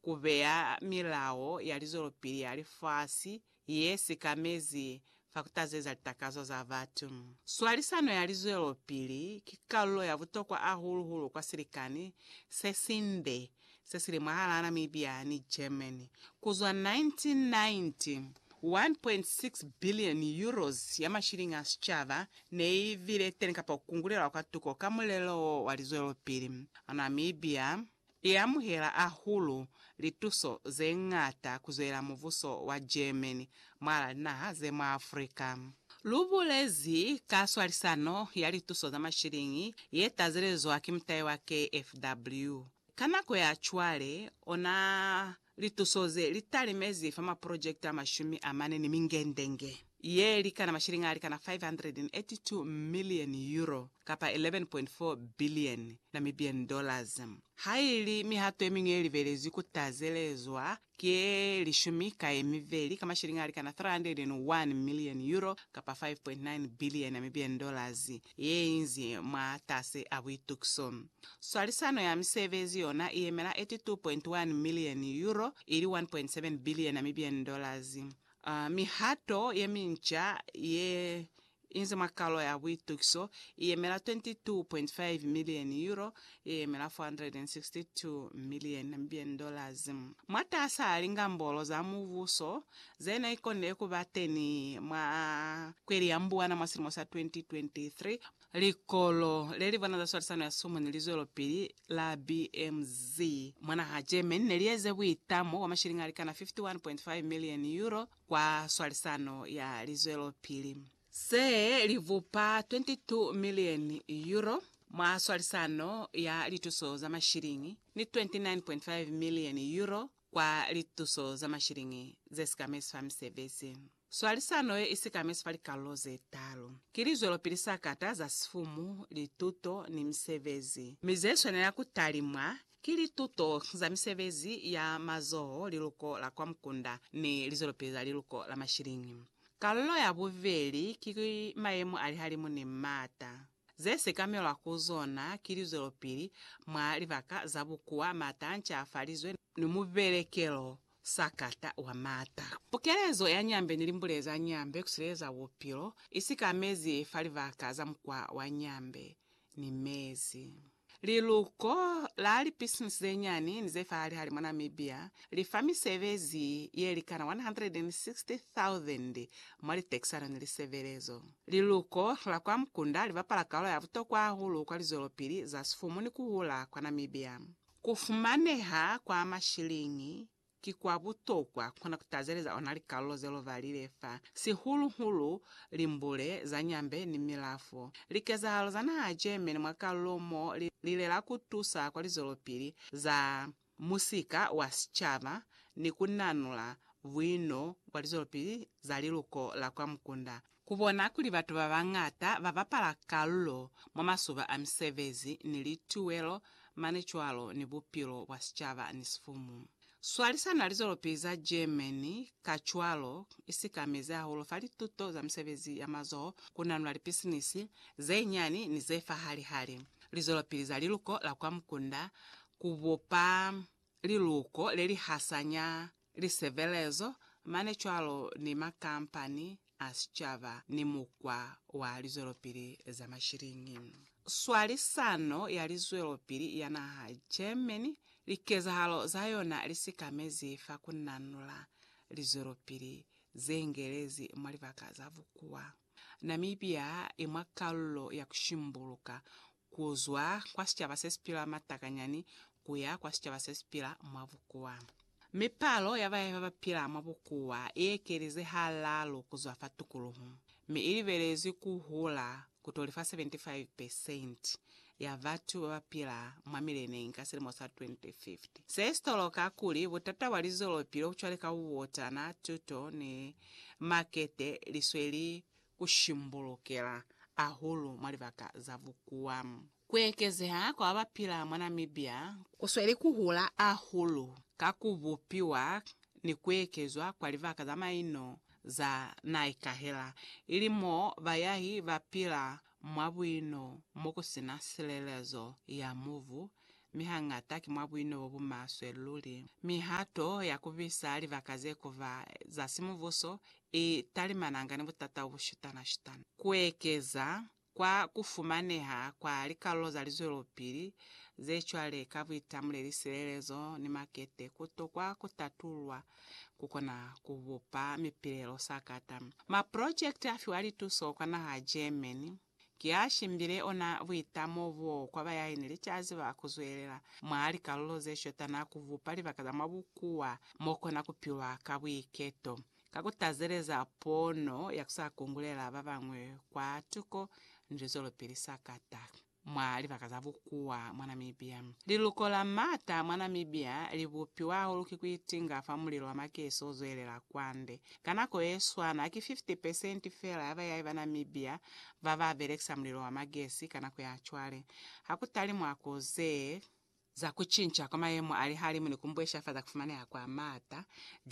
ku beya milao ya lizwelopili ya lifasi ye sikamezi fa ku tazeza litakazo za batu. Swalisano ya lizwelopili ki kalulo ya butokwa ahulu hulu kwa silikani se sinde se si li mwahalaa Namibia ni Germany. Ku zwa 1990, €1.6 billion ya mashilingi a sicaba ne i bile teni kapa ku kungulelwa kwa tuko ka mulelo wo wa lizwelopili. Namibia, I amuhela ahulu lituso ze ñata kuzwela mubuso wa Germany mwala linaha ze mwa Africa. Lu bulezi ka swalisano ya lituso za mashiliñi ye tazelezwa ki mutai wa KFW. Ka nako ya cwale, ona Lituso ze li talimezi fa maprojekiti a mashumi a mane ni mingendenge ye likana mashilingi a likana 582 milioni, euro, kapa 11.4 bilioni, Namibian dollars, ha i li mihato ye miñwi ye libelezwi ku tazelezwa ki ye lishumi ka ye mibeli ka mashilingi a likana 301 milioni, euro, kapa 5.9 bilioni, Namibian dollars, ye inzi mwatasi a buitukiso. Swalisano ya misebezi yona i yemela €82.1 milioni, euro ili 1.7 billion Namibian dollars. Mihato ye minca ye inzi mwa kalo ya buitukiso i yemela €22.5 milioni, euro ye yemela 462 million mbn dollars. Mwataasa lingambolo za mubuso ze ne konile ku ba teni mwa kweli ya Mbwana mwa silimo sa 2023, likolo le li bona za swalisano ya sumu ni lizwelopili la BMZ mwa naha Germany ne li eze buitamo bwa mashilingi a likana 51.5 million euro kwa swalisano ya lizwelopili. se li bupa €22 milioni mwa swalisano ya lituso za mashiliñi ni €29.5 milioni kwa lituso za mashiliñi ze sikamezi fa misebezi. Swalisano ye i sikamezi fa likalolo ze talu ki lizwelopili sa kata za sifumu, lituto, ni misebezi, mi ze swanela ku talimwa ki lituto za misebezi ya mazoho, liluko la kwa mukunda, ni lizwelopili za liluko la mashiliñi. Kalulo ya bubeli ki mayemo a lihalimu ni m'ata ze sekamelwa ku zona ki lizwelopili mwa libaka za bukuwa, m'ata a ncafalizwe, ni mubelekelo sakata wa m'ata. Pukelezo ya nyambe ni limbule za nyambe ku sileleza bupilo, isi ka mezi fa libaka za mukwa wa nyambe, ni mezi. Liluko la lipisinisi zenyani ni ze fahali-hali mwa Namibia li fa misebezi ye li kana 160,000 mwa litekisano ni lisebelezo. Liluko la kwa mukunda li bapala kaolo ya butokwa hahulu kwa lizwelopili za sifumu ni ku hula kwa Namibia. Ku fumaneha kwa mashiliñi Ki kwa butokwa ku na ku tazeleza ona likalulo ze lu balile fa, sihulu-hulu limbule za nyambe ni milafo. Likezahalo za naha ya Germany mwa kalulo mo li lilela ku tusa kwa lizwelopili za musika wa sicaba ni ku nanula buino bwa lizwelopili za liluko la kwa mukunda. Ku bona kuli batu ba bañata ba bapala kalulo mwa masuba a misebezi ni lituwelo mane cwalo ni bupilo bwa sicaba ni sifumu. Swalisano ya lizwelopili za Germany kacwalo i sikamezi hahulu fa lituto za misebezi ya mazoho ku nanula lipisinisi ze nyani ni ze fahali-hali, lizwelopili za liluko la kwa mukunda, ku bopa liluko le li hasanya lisebelezo, mane cwalo ni makampani a sicaba ni mukwa wa lizwelopili za mashiliñi. Swalisano ya Lizwelopili ya Naha Germany likezahalo za yona li sikamezi fa ku nanula lizwelopili ze ngelezi mwa libaka za bukuwa. Namibia i mwa kalulo ya ku shimbuluka ku zwa kwa sicaba se si pila mwa takanyani ku ya kwa sicaba se si pila mwa bukuwa. Mi palo ya bae ba ba pila mwa bukuwa i ekelize halaalu ku zwa fa tukuluhu, mi i libelezwi ku hula ku to li fa 75 pesenti ya batu ba ba pila mwa mileneñi ka silimo sa 2050. Se si toloka kuli butata bwa lizwelopili obucwale ka bubotana, tuto ni makete li sweli ku shimbulukela ahulu mwa libaka za bukuwa. Ku ekezeha kwa ba ba pila mwa Namibia ku sweli ku hula ahulu ka ku bupiwa ni ku ekezwa kwa libaka za maino za naikahela, ili mo bayahi ba pila mwa buino mo ku si na silelezo ya mubu, mi hañata ki mwa buino bo bu maswe luli. Mihato ya ku bisa libaka ze ku ba za simubuso i talimananga ni butata obushutana-shutana. Kuekeza kwa kufumaneha kwa likalulo za lizwelopili zecwale ka buitamuleli, silelezo, ni makete kutokwa kutatululwa kukona kubupa mipilelo sakata. Maprojekiti afiwa lituso kwa naha ya Germany. Ki a shimbile ona buitamo bo kwa bayaeni licazi ba ku zwelela mwa likalulo ze shota na ku bupa libaka za mwa bukuwa mo kona ku pilwa ka buiketo, ka ku tazeleza pono ya ku sa kungulela ba bañwi kwa tuko ni lizwelopili sakata mwa libaka za bukuwa mwa Namibia. Liluko la m'ata mwa Namibia li bupiwa hahulu ki ku itinga fa mulilo wa makesi o zwelela kwande Ka nako yeswana, ki 50 pesenti feela ya bayahi ba Namibia ba ba belekisa mulilo wa magesi ka nako ya cwale. Ha ku tali mwa ku ze. Za ku cinca kwa mayemo a lihalimu ni ku mbwesha fa za ku fumaneha kwa maata,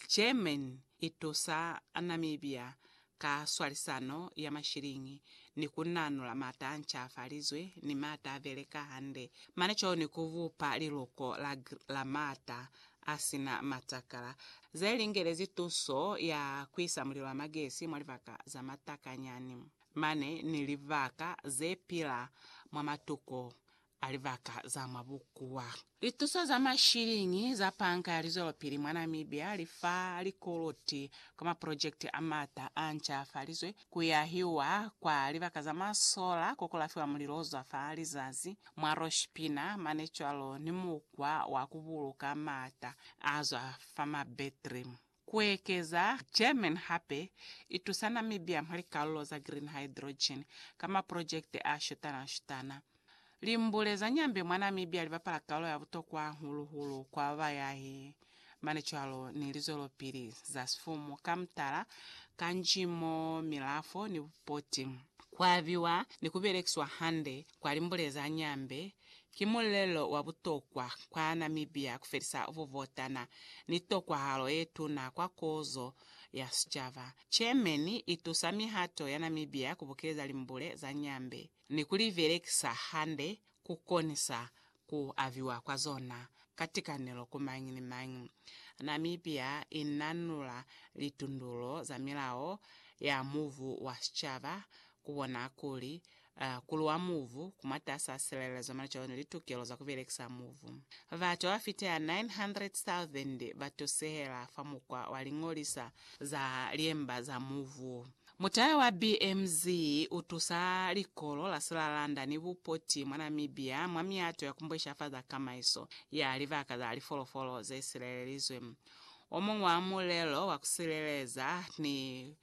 Germany i tusa Namibia ka swalisano ya mashiliñi ni ku nanula maata a ncafalizwe ni maata a beleka hande mane cwalo ni ku bupa liluko la la maata a si na matakala, ze lingelezi tuso ya ku isa mulilo wa magesi mwa libaka za matakanyani mane ni libaka ze pila mwa matuko a libaka za mwa bukuwa. Lituso za mashiliñi za Panka ya Lizwelopili mwa Namibia li fa likoloti kwa maprojekiti a m'ata a ncafalizwe, ku yahiwa kwa libaka za masola ko ku lafiwa mulilo o zwa fa lizazi, mwa loshipina mane cwalo ni mukwa wa ku buluka maata a zwa fa mabetri. Ku ekeza German hape i tusa Namibia mwa likalulo za green hydrogen ka maprojekte a shutana-shutana. Limbule za Nyambe mwa Namibia li bapala kalulo ya butokwa hahulu-hulu kwa bayahi Mane cwalo ni lizwelopili za sifumu ka mutala, kanzhi mo milafo ni bupoti kwa abiwa ni ku belekiswa hande kwa limbule za nyambe, ki mulelo wa butokwa kwa Namibia ku felisa bubotana ni tokwahalo ye tuna kwa kozo ya sicaba. Chairman i tusa mihato ya Namibia ku bukeleza limbule za nyambe. ni ku li belekisa hande ku konisa ku abiwa kwa zona ka tikanelo ku mañi ni mañi. Namibia i nanula litundulo za milao ya mubu wa sicaba ku bona kuli ku luwa mubu ku mwatas'a silelezo mwalicalo ni litukelo za ku belekisa mubu. Batu ba ba fiteha 900,000 ba tusehela fa mukwa wa liñolisa za liemba za mubu. Mutala wa BMZ u tusa likolo la silalanda ni bupoti mwa Namibia mwa miato ya ku mbweshafaza kamaiso ya libaka za lifolofolo ze silelelizwe. O muñwi wa mulelo wa ku sileleza ni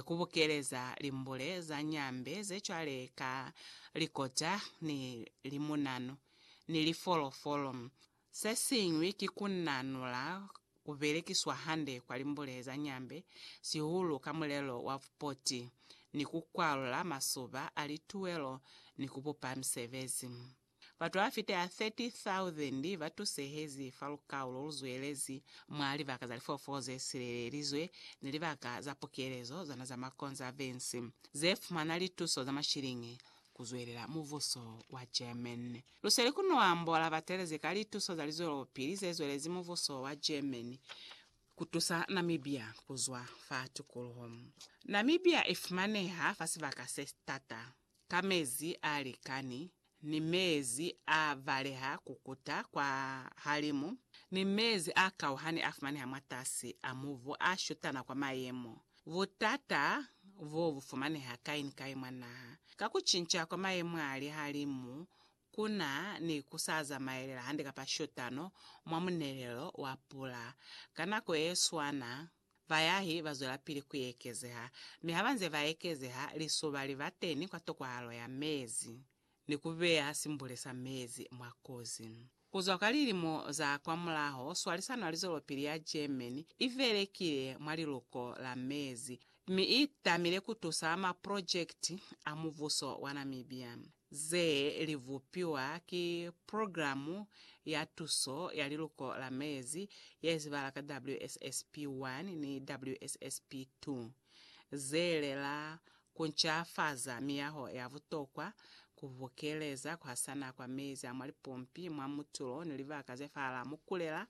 ku bukeleza limbule za nyambe ze cwale ka likota ni limunanu ni lifolofolo, Se siñwi ki ku nanula ku belekiswa hande kwa limbule za nyambe, sihulu ka mulelo wa bupoti, ni ku kwalula masuba a lituwelo ni ku bupa misebezi. Batu ba fita 30,000 ba tusehezi fa lukau lo lu zwelezi mwa libaka za lifoofolo ze silelelizwe ni libaka za pukelezo zana za makonzavensi, ze fumana lituso za mashiliñi ku zwelela mubuso wa Germany. Lu seli ku no ambola batelezi ka lituso za lizwelopili ze zwelezi mubuso wa Germany ku tusa Namibia ku zwa fa tukuluho. Namibia i fumaneha fa sibaka se t'ata, ka mezi a likani, ni mezi a baleha ku kuta kwa halimu, ni mezi a kauhani a fumaneha mwatasi a mubu a shutana kwa mayemo Butata bo bu fumaneha kai ni kai mwa naha. Ka ku cinca kwa mayemo a lihalimu, ku na ni ku sa zamaelela hande kapa shotano mwa munelelo wa pula. Ka nako ye swana, bayahi ba zwelapili ku ekezeha, mi ha ba nze ba ekezeha, lisoba li ba teni kwa tokwahalo ya mezi. ni ku beya simbule sa mezi mwa kozi. Ku zwa ka lilimo za kwamulaho, swalisano ya lizwelopili ya Germany i belekile mwa liluko la mezi mi i tamile ku tusa maprojekiti a mubuso wa Namibia ze li bupiwa ki Purogiramu ya Tuso ya Liluko la Mezi ye zibala ka WSSP I ni WSSP II, ze lela Ku ncafaza miyaho ya butokwa, ku bokeleza ku hasana kwa mezi a mwa lipompi, mwa mutulo ni libaka ze fahalaa mukulela,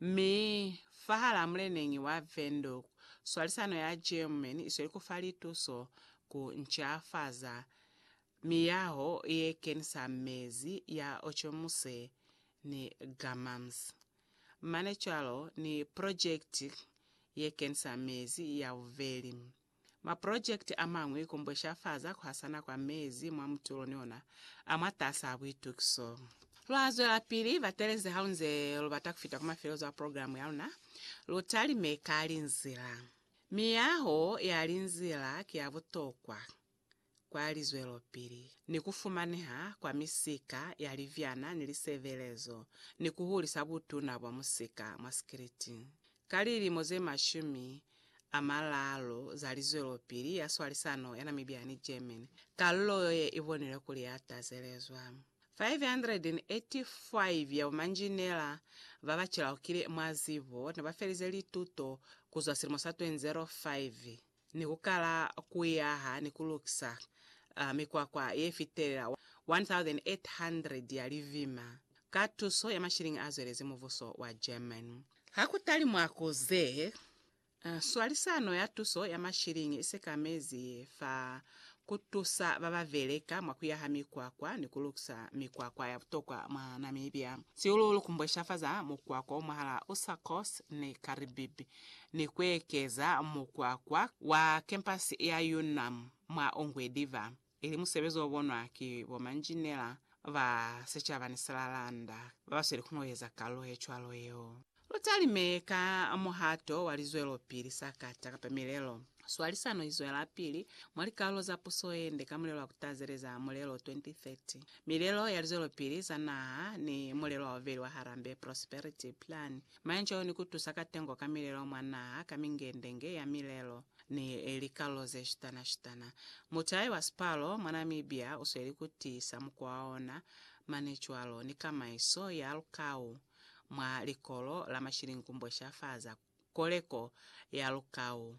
mi fahalaa muleneñi wa Wendhoek, swalisano ya Germany isweli ku fa lituso ku ncafaza miyaho ye kenisa mezi ya Ochomuse ni Gammams, mane cwalo ni projekiti ye kenisa mezi ya bubeli. Mapurojekiti a mañwi kumbweshafaza kuhasana kwa mezi mwa mutulo ni ona a mwatasaa buitukiso. Lwa zwelapili batelezi haunze lubata kufita ku mafelezo a programu yaluna. Lutalime ka linzila. Miyaho ya linzila ki ya butokwa. kwa lizwelopili ni ku fumaneha kwa misika ya libyana ni lisebelezo ni ku hulisa butuna bwa musika mwa sikiliti. Ka lilimo ze mashumi a malaalu za lizwelopili ya swalisano ya Namibia ni Germany, kalulo yo ye i bonilwe kuli ya tazelezwa. 585 ya bomanjinela ba ba cilaukile mwa zibo ne ba felize lituto ku zwa silimo sa 2005 ni ku kala ku yaha ni ku lukisa mikwakwa ye fitelela 1,800 ya livima ka tuso ya mashilingi a zwelezi mubuso wa German. Ha ku talimwa ku ze, swalisano ya tuso ya mashilingi i sekamezi fa ku tusa ba ba beleka mwa ku yaha mikwakwa ni ku lukisa mikwakwa ya butokwa mwa Namibia, sihulu-hulu ku mbweshafaza mukwakwa o mwahal'a Usakos ni Karibibi. ni kuekeza mukwakwa wa kempasi ya UNAM mwa Ongwediva, ili musebezi obonwa ki bomanjinela ba sicaba ni silalanda babasweli kuñoeza kalulo yecwalo yeo. Lutalime ka muhato wa lizwelopili sa kata kapa milelo. Swalisano izwelapili mwa likalulo za puso yende ka mulelo wa kutazeleza Mulelo 2030, Milelo ya Lizwelopili za Naha ni Mulelo wa Bubeli wa Harambee Prosperity Plan Manjeo ni ku tusa ka tengo ka milelo mwa naha ka mingendenge ya milelo ni likalo ze shitana-shitana. Mutai wa Sipalo mwa Namibia u sweli ku tiisa mukwa wa ona mane cwalo ni kamaiso ya lukau mwa likolo la mashilingumbwe sha fa za koleko ya lukau.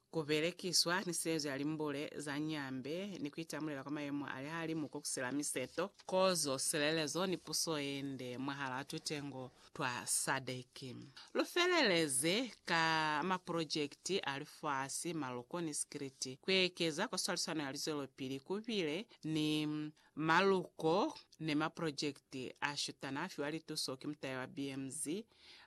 ku belekiswa ni silezo ya limbule za nyambe, ni ku itamulela kwa mayemo a lihalimu ko kusela miseto, kozo, silelezo, ni puso ye nde mwahalaa tutengo twa SADC. Lu feleleze ka maprojekiti a lifasi, maloko, ni sikiliti, ku ekeza kwa swalisano ya lizwelopili ku bile ni Maluko ni maprojekiti a shutana a fiwa lituso ki mutaya wa BMZ,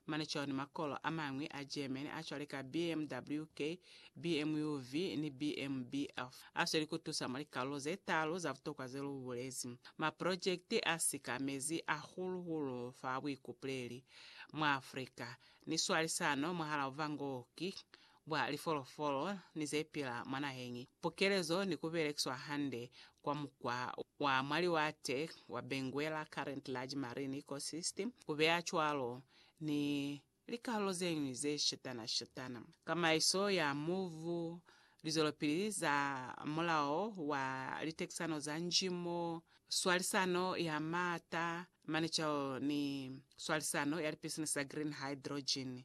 mane cwalo ni makolo a mañwi a Germany a cwale ka BMWK, BMUV, ni BMBF a sweli ku tusa mwa likalulo ze taalu za butokwa ze lu bulezi. Maprojekiti a sikamezi hahulu-hulu fa buikupuleli mwa Afrika ni swalisano mwahal'a buvangoki bwa lifolofolo ni ze pila mwa naheñi, pukelezo ni ku belekiswa hande kwa mukwa wa mwa liwate wa Benguela Current Large Marine Ecosystem, ku beya cwalo ni likalulo ze ñwi ze shetana-shetana. Kamaiso ya mubu, lizwelopili za mulao wa litekisano za njimo, swalisano ya maata, manecelo ni swalisano ya lipisinisi za green hydrogen.